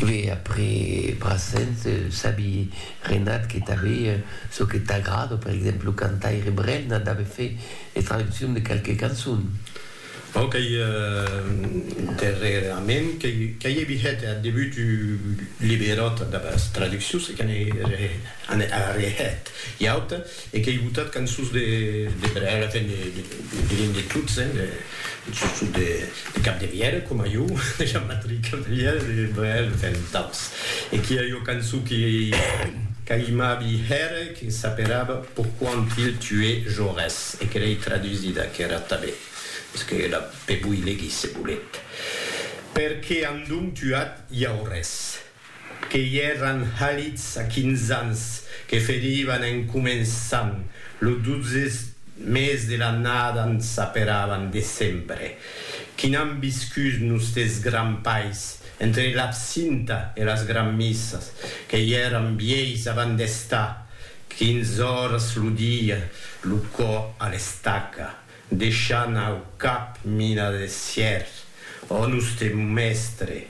Ve après Brassens, sabi Renat que tanbe çò que t'agrada, per exemple lo cantaire Brel n'a dave fait de traduccion de qualques cançons. Bon qu'ei darrerament qu'ei evi hèt ath debut un liberòt damb as traduccions e que n'ei arrehèt ua auta. E qu'ei botat cançons de brèga, enfin diguem de tots, hein, de surtot de Capdevièlh, coma jo, de Jean-Patrick Capdevièlh, de Brel, enfin d'autres. E qu'i a ua cançon que qu'aimabi hèr, que s'aperava Pourquoi ont-ils tué Jaurès? e que l'ei tradusida aquera tanben, mès que la pevoí legir se volet, Perqué an donc tuat Jaurès? que i èran halits a quinze ans, que ferivan en començant lo dotze mes de l'annada n s'aperavan decembre, qui n'an viscut nustes grands pais, entre l'absinta e las granmissas, que i èran vièis avant d'estar quinze oras lo dia lo cò a l'estaca, Deishant au cap mina de sièrs, ò nustre mèstre,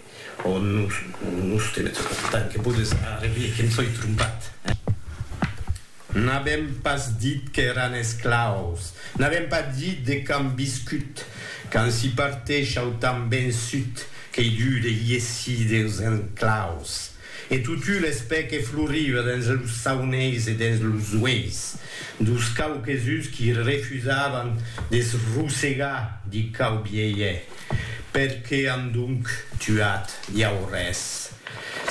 ò nustre, tant que podes arrevier que em soi trompat, eh? N'avèm pas dit qu'èran esclaus, n'avèm pas dit de qu'an viscut, qu'an si parteishau tan ben sut qu'ei dut de iessir deus enclaus. E totu l'espè que floriva dens los sauneis e dens los ueis dos quauques uns qui refusavan de se rosegar di quau bielhe, per que an donc tuat iau res?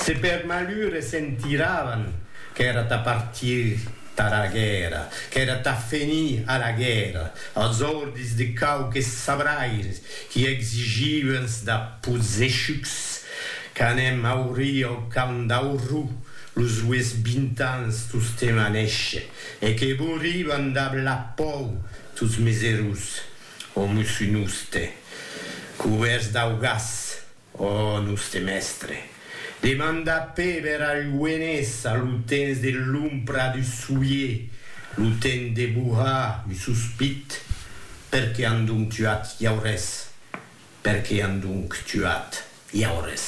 Se per malure sentiravan qu'èra tà partir tara guèrra, qu'èra tà fenir a la guèrra, als ordis de quauques sabraires qui exigivans da pozechucs Qu'anem aurir au Camp d'Aurrú los ues vint ans tostemp a néisher, e que bouriban dab la pòu tots mes erós, o mosso noste, cubèrts dau gas, o noste mèstre, demanda Péber al Lluenés a lo temps de l'ompra du soulier, lo temps de bohar un sospit, perqué an donc tuat Llaurés? Per qué an donc tuat Jaures?